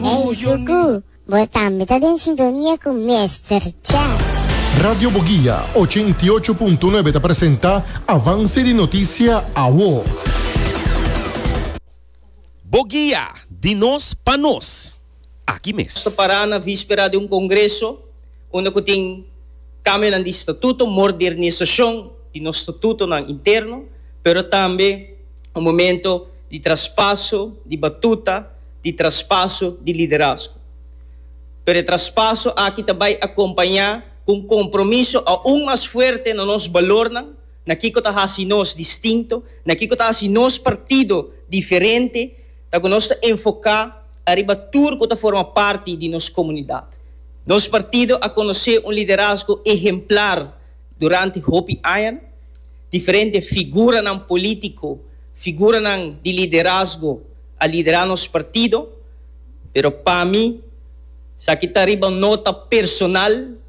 Ey Zuku, bo tambe ta den sintonia cu Mester Chef. Radio Boguia ocho i ocho punto nuebe ta presenta Avance di Noticia Awo. Boguia, di nos pa nos, aki mes. Nos ta para na vispera di un congreso unda cu tin cambionan di statuto, modernisacion di nos statutonan interno, pero tambe un momento di traspaso di batuta, di traspaso di liderazgo. Pero e traspaso aki ta bai acompaña cu un compromiso aun mas fuerte na nos balornan, na kico ta haci nos distinto, na kico ta haci nos partido diferente, ta cu nos ta enfoca ariba tur cu ta forma parti di nos comunidad. Nos partido a conoce un liderazgo ehemplar. Durante hopi aña, diferente figuranan polítiko, figuranan di liderazgo a liderá nos partido, pero pa mi esaki ta riba un nota personal,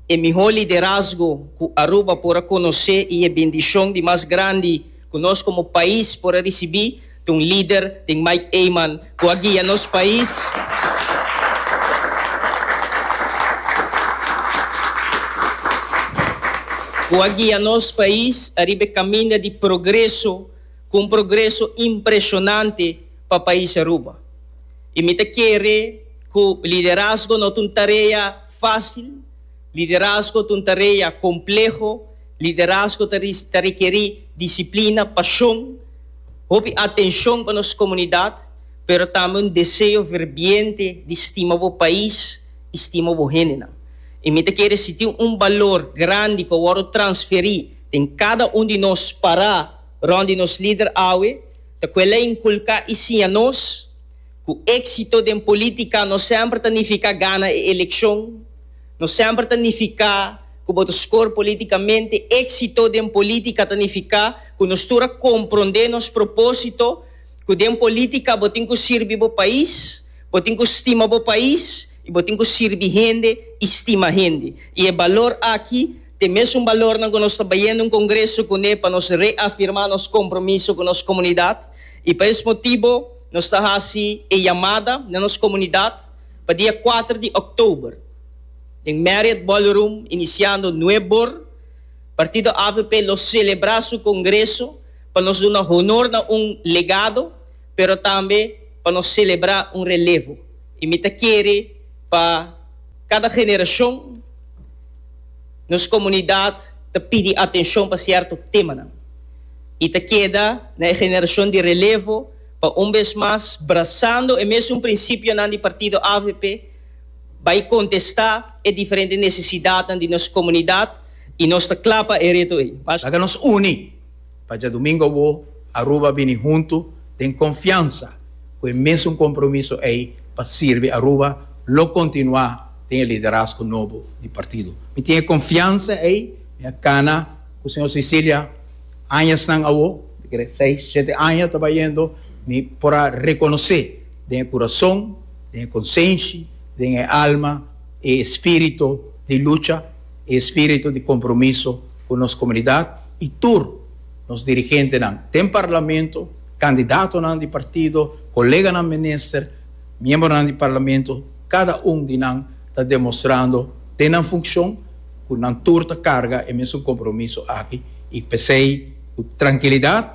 e mihó liderazgo ku Aruba por a konosé i e bendishon di mas grandi ku nos komo pais por a risibí, Tin un lider, tin Mike Eman, cu a guia nos pais cu a guia nos pais ariba e caminda di progreso, cu un progreso impresionante pa pais Aruba. Y mi ta kere cu liderazgo no ta un tarea facil, liderazgo ta un tarea compleho, liderazgo ta ta rekeri disciplina, pasion, Hopi atencion pa nos comunidad, pero tambe un deseo ferviente di stima bo pais y stima bo hendenan. Y mi ta kere si tin un balor grandi cu a wordo transferi den cada un di nos para rond di nos lider awe, ta cu el a inculca y siña nos, Cu exito den politica no semper ta nifica gana e eleccion, no semper ta nifica cu bo ta score politicamente, exito den politica ta nifica cu nos tur a comprende nos proposito, cu den politica bo tin cu sirbi bo pais, bo tin cu stima bo pais y bo tin cu sirbi hende y stima hende. Y e balor aki ta e mesun balornan cu nos ta bayendo un congreso cune pa nos reafirma nos compromiso cu nos comunidad y pa es motibo, Nos ta hasi e yamada na nos komunidat pa dia kuater di òktober den Marriott Ballroom inisiando nueb or. Partido avp lo selebrá su kongreso pa nos duna honor na un legado pero tambe pa nos selebrá un relevo i mi ta kere pa kada generashon. Nos komunidat ta pidi atenshon pa sierto temanan i ta keda na e generashon di relevo pa un bes mas, brasando e mesun prinsipionan di partido avp, bai kontestá e diferente nesesidatnan di nos komunidat i nos ta kla pa e reto ei. Laga nos uni! Pa djadumingo bo Aruba bini huntu den konfiansa ku e mesun kompromiso ei pa sirbi Aruba lo kontinuá den e liderazgo nobo di partido. Mi tin e konfiansa ei, mi a kana ku señor Sicilia añasnan awo, mi ta kere seis, shete aña ta bayendo, mi por a rekonosé den e kurason, den e konsenshi, den e alma e espirito di lucha, e espirito di kompromiso. cu nos comunidad y tur nos dirigentenan den Parlamento, candidatonan di partido, coleganan minister, miembronan di Parlamento, cada un di nan ta demostrando den nan funcion cu nan tur ta carga e mesun compromiso aki y p'esey cu trankilidad,